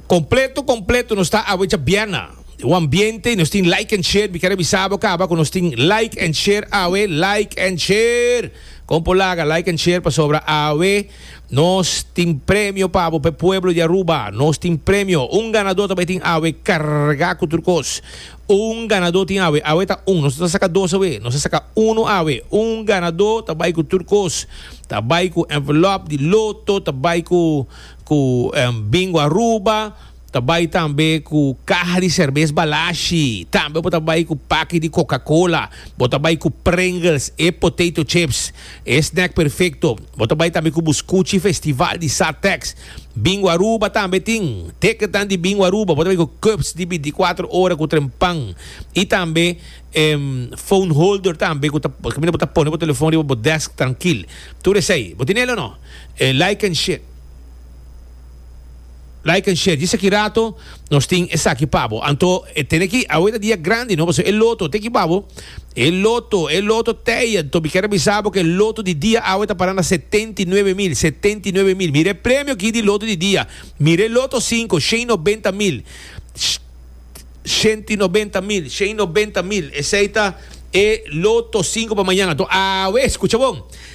Completo completo nos ta awe cha biena o ambiente nos tin like and share mi quiere avisar bo caba con nos tin like and share awe like and share compo laga like and share pasobra awe nos tin premio pabo pe pueblo di Aruba nos tin premio un ganador ta bay tin awe carga cu tur cos. Un ganadó tin awe. Awe ta un. Nos no ta saka dos awe. Nos ta saka uno awe. Un ganadó ta bai ku tur kos. Ta bai ku envelop di loto, ta bai ku ku Bingo Aruba, ta bai tambe ku kaha di serbes Balashi, tambe bo ta bai ku paki di Coca-Cola, bo ta bai ku Pringles, e potato chips. E snack perfecto. Bo ta bai tambe cu bo scuchi festival di Satex. Bingo Aruba tambe tin. Teketan di Bingo Aruba bo ta bai cu cups di binticuatro ora cu trempan y tambe e phone holder tambe cu ta caminda bo ta pone bo telefon riba bo desk trankil. Tur esey bo tin el o no? Like and shit. Like and share djis aki rato nos tin esaki pa bo anto e tene aki awe ta dia grandi no pasobra e loto te ki pa bo e loto e loto tey anto mi kier bisa bo ke e loto di dia awe ta para na setenta i nuebe mil setenta i nuebe mil mira e premio aki di loto di dia mira e loto sinku shen i nobenta mil shente i nobenta mil shen i nobenta mil esey ta e loto sinku pa mañana anto awe skucha bon.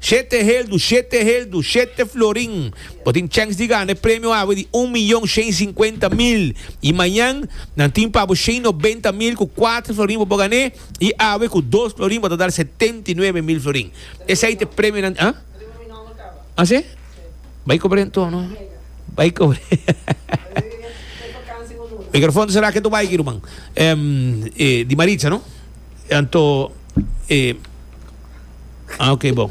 Shete heldu, shete heldu, shete florin. Bo tin chèns di gana e premio awe di un miyon shen i sinkuenta mil. I mañan nan tin pa bo shen i nobenta mil ku kuater florin bo por gan'é, i awe ku dos florin bo ta dal setenta i nuebe mil florin. Esei ta e premionan di Así? Bai kobr'é anto no. Bai kobr'é. Mikrofòn ta sera, ke tu bai aki ruman. Di Maritza no. Anto, e, ah, ok, bon.